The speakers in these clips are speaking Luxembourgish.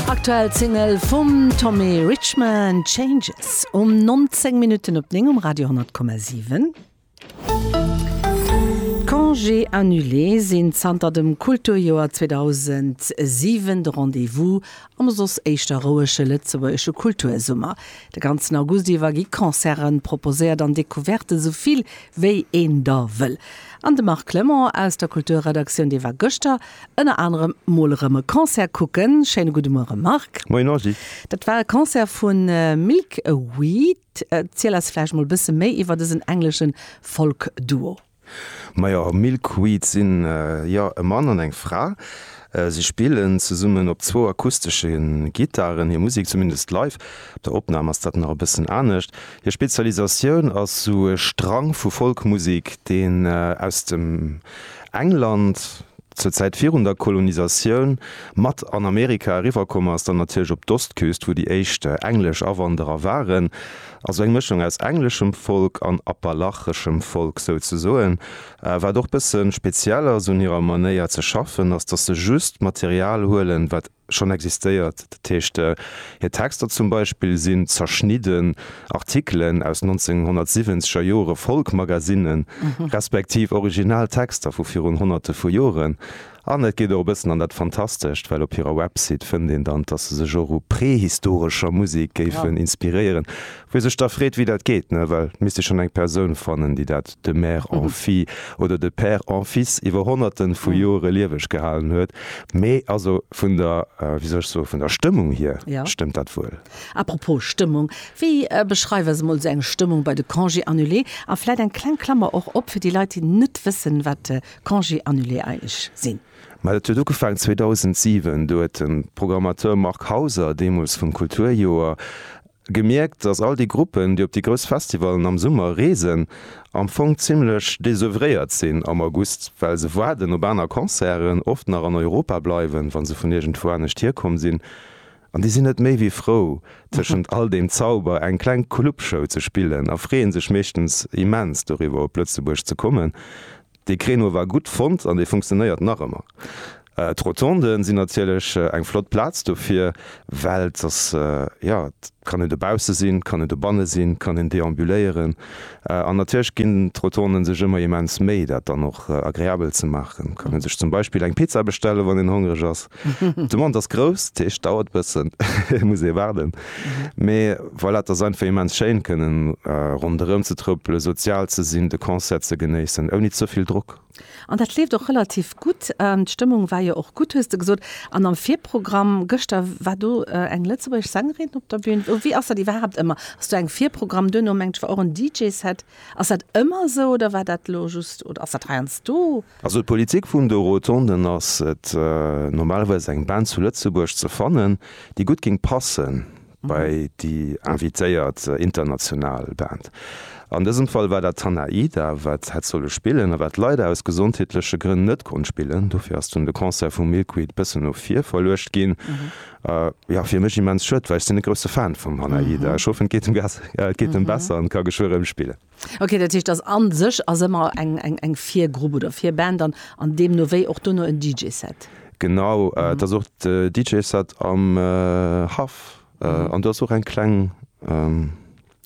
Aktuell Single vum Tommy Richman, Changes. Um 19 Minutten op 9 um Radio 10,7. D'Congés annulés sinn zanter dem Kulturjoer 2007 de Rendez-vous am soss éischter rouege lëtzebuergesche Kultursummer. De ganzen August iwwer gi Concerten proposéiert an Decouverten, esou vill wéi een der wëll. An de Marc Clement aus der Kulturredaktioun, dee war gëschter ënner anerem mol erëm e Concert kucken. Schéine gudde Muere Marc. Moien Angie. Dat war e Concert vu Milk a Weed. Erziel eis vläicht mol e bësse méi iwwer dësen engleschen Folk-Duo. Majo, Milk a Weed sinn jo e Mann an eng Fra. Si spillen zesummen op zwou akustesche Gittaren hir Musek, zumindest live. Op der Opnam ass dat nach e bëssen anescht. Hir Spezialisatioun ass sou e Strang vu Folkmusek, deen aus dem England, zur Zäit virun der Kolonisatioun, mat an Amerika eriwwerkomm ass, dann natierlech op d'Ostküst, wou déi éischt englesch Awanderer waren, also eng Mëschung aus engleschem Folk an appalacheschem Folk souzesoen. Wat och bësse speziell ass un hirer Manéier ze schaffen, ass, datt se just Material huelen, wat schonn existéiert. Dat heescht, hir Texter zum Beispill sinn zerschnidden Artikelen aus 1970 er Jore Folk-Magazinen, respektiv original Texter vu virun Honnerte vu Joren. An et geet och e bëssen an dat Fantastescht, well op hirer Website fënnt een dann, dass se sech och u prehistorescher Musek géifen inspiréieren. Wie sech da freet, wéi dat geet, ne, well et misst ee schonn eng Persoun fannen, déi dat de mère en fille oder de père en fils iwwer Honnerte vu Jore lieweg gehalen huet. Mee also vun der, wéi soll ech soen, vun der Stëmmung hier stëmmt dat wuel. Apropos Stëmmung, wéi beschreift eis emol esou eng Stëmmung bei de Congés annulés? A vläit eng kleng Klammer och op fir déi Leit, déi net wëssen, wat Congés annulés eigentlech sinn. Mä dat huet ugefaangen 2007. Do huet de Programmateur Marc Hauser, deemools vum Kulturjoer, Gemierkt, dass all déi Gruppen, déi op déi grouss Festivalen am Summer reesen, am Fong zimmlech desœuvréiert sinn am August, well se waarden op aner Concerten, oft nach an Europa bleiwen, wa se vun iergendwou anescht hierkomm sinn. An déi sinn net méi wéi frou, tëschent all deem Zauber eng kleng Clubshow ze spillen a freeën sech meeschtens immens doriwwer, op Lëtzebuerg ze kommen. Dee Créneau war gutt fonnt an dee funktionéiert nach ëmmer. D'Rotonden sinn natierlech eng flott Plaz dofir, well et ass, jo, et kann een dobausse sinn, et kann een dobanne sinn, et kann een deambuléieren. An natierlech ginn d'Rotonden sech ëmmer immens Méi, dat dann och agreabel ze maachen. Et kann ee sech zum Beispill eng Pizza bestellen, wann een hongereg ass. D'Demande ass grouss, dat heescht, dauert e bëssen, muss ee waarden. Mee voilà, et ass einfach immens schéin, kënnen ronderëm ze trëppelen, sozial ze sinn, de Concert ze genéissen, ouni ze vill Drock. An dat leeft och relativ gutt. D'Stëmmung war jo och gutt, hues de gesot. An am Virprogramm gëschter war do eng lëtzebuergesch Sängerin op der Bün. Wéi ass dat iwwerhaapt ëmmer? Ass do eng Virprogramm, duerno mengt ech war och en DJ-Set. Ass dat ëmmer esou oder war dat elo just oder ass dat heiansdo? Also d'Politik vun de Rotonden ass et, normalerweis eng Band zu Lëtzebuerg ze fannen, déi gutt géing passen bei déi invitéiert international Band. An dësem Fall war dat Tanaida, wat hätt solle spillen a wat leider aus gesondheetleche Grënn net konnt spillen. Dofir ass dunn de Concert vu Milkweed bëssen no vir verluecht ginn. Jo, fir mech immens schued, well ech sinn e grousse Fan vum Tanaida. Ech hoffen, et geet em besser an e ka geschwë rëm spillen. Ok, dat heescht, dass an sech ass ëmmer eng Virgrupp oder Virband an an deemno wéi och dono en DJ-Set? Genau, et ass och de DJ-Set am Haff an do ass och eng kleng,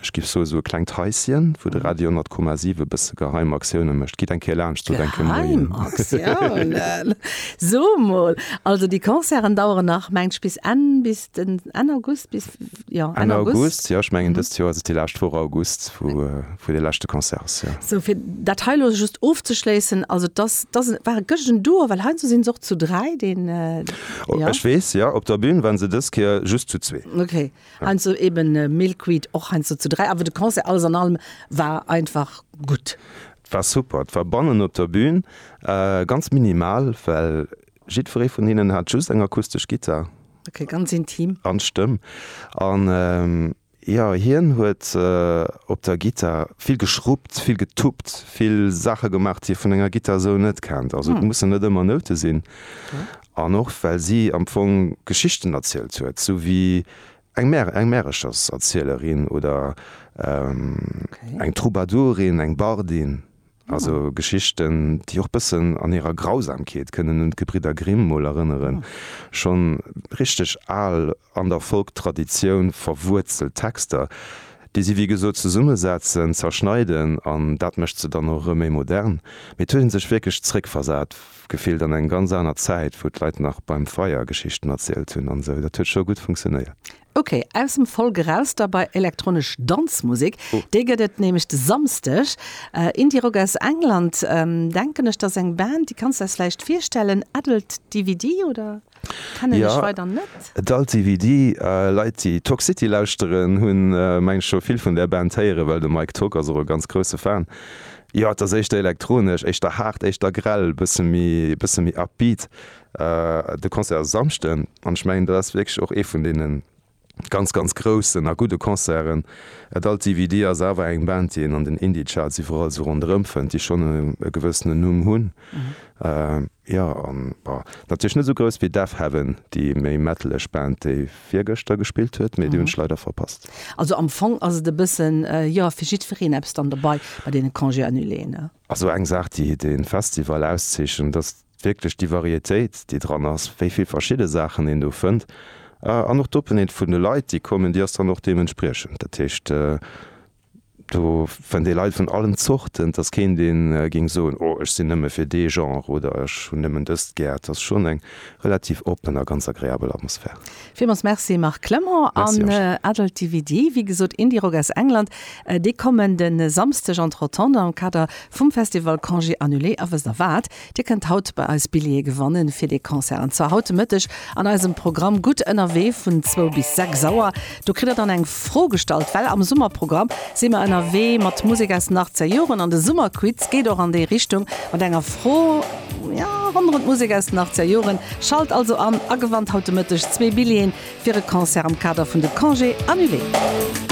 ech giff soe sou e klengt Haisschen, wou de Radio 10,7 e bësse geheim Aktiounen mécht. Gitt eng Kéier laanscht sot eng Kéier Moien. Geheim Aktiounen? So mol, also déi Concerten daueren nach mengt bis Enn, bis den Enn August, bis? Ja, Enn August. Jo, ech mengen dëst Joer ass et déi lescht Woch August, wou dee leschte Concert ass, jo. Sou, fir dat hei elo just ofzeschléissen, also dass, dass, war et gëscht en Duo? Well heiansdo sinn se och zu dräi, deen, jo. Ech weess, jo, op der Bühn waren se dës Kéier just zu zwee. Okay, heiansdo eben Milkweed och heiansdo zu dräi, awer de Concert alles an allem war einfach gutt. Et war super, et war bannen op der Bühn ganz minimal, well Jiddweree vun hinnen hat just eng akustesch Gittar. Ok, ganz intim. An d'Stëmm. An jo, hien huet op der Gittar vill geschruppt, vill getuppt, vill Saache gemaach, déi ee vun enger Gittar esou net kennt. Also et mussen net ëmmer Noute sinn. An och well si am Fong Geschichten erzielt huet, sou wéi eng Mär, eng Märecherserzielerin oder eng Troubadourin, eng Bardin. Also Geschichten, déi och bëssen an hirer Grausamkeet kënnen un d'Gebridder Grimm mol erënneren. Schonn richteg al, an der Folk-Traditioun verwuerzelt Texter, déi si wéi gesot zesummesetzen, zerschneiden an dat mécht se dann och erëm méi modern. Mee et huet ee sech wierklech zeréckversat gefillt an eng ganz aner Zäit, wou d'Leit nach beim Feier Geschichten erzielt hunn an esou. Dat huet scho gutt funktionéiert. Ok, aus dem Folk eraus da bei elektronesch Danzmusek. Déi gëtt et nämlech de Samsdeg. Indie-Rock aus England, denken ech, dat ass eng Band, déi kanns de eis vläicht virstellen, Adult DVD, oder? Kennen ech weider net. Jo, Adult DVD. Leit, déi Toxcity lauschteren, hunn, mengen ech, scho vill vun där Band héieren, well de Mike Tock ass och e ganz grousse Fan. Jo, et ass éischter elektronesch, éischter haart, éischter grell, e bësse méi upbeat. De Concert ass e Samschden an ech mengen dat ass wierklech och ee vun deene ganz ganz groussen a gudde Concerten. Et alt DVD ass awer eng Band déi een an den Indie-Charts iwwerall esou ronderëm fënnt, déi schonn e gewëssenen Numm hunn, jo an bon natierlech net esou grouss wéi Deafheaven, déi méi metaleg Band déi virgëschter gespillt huet, mee déi hunn ech leider verpasst. Also am Fong ass et e bëssen jo fir jiddwereen eppes dann dobei bei deene Congé annuléen. A sou eng Saach, déi de Festival auszeechent, ass wierklech déi Varietéit, déi dran ass, wéi vill verschidde Saachen een do fënnt. An och d'Openheet vun de Leit, déi kommen, déi ass dann och deementspriechend. Dat heescht, do fënnt ee Leit vun allen Zorten. Et ass keen, dee géing soen, Oh, ech sinn nëmme fir dee Genre oder ech hunn nëmmen dëst gär. Et ass schonn eng relativ oppen a ganz agreabel Atmosphär. Villmols Merci Marc Clement an Adult DVD, wéi gesot Indie Rock aus England, déi kommen de Samsdeg an d'Rotande am Kader vum Festival Congé Annulé. A wësst der wat, Dir kënnt haut bei eis Billjeeë gewanne fir dee Concert an zwar haut de Mëtteg an eisem Programm Gutt ënnerwee vun zwou bis sechs Auer. Do kritt der dann eng Fro gestallt, well am Summerprogramm si mer ënnerwee mat Musek aus den Achtzegerjoren an de Summerquiz geet och an déi Richtung mat enger Fro, Jo, rondrëm d'Musek aus den achtzeger Joren. Schalt also an a gewannt haut de Mëtteg zwee Billjeeën fir e Concert am Kader vun de Congés annulés.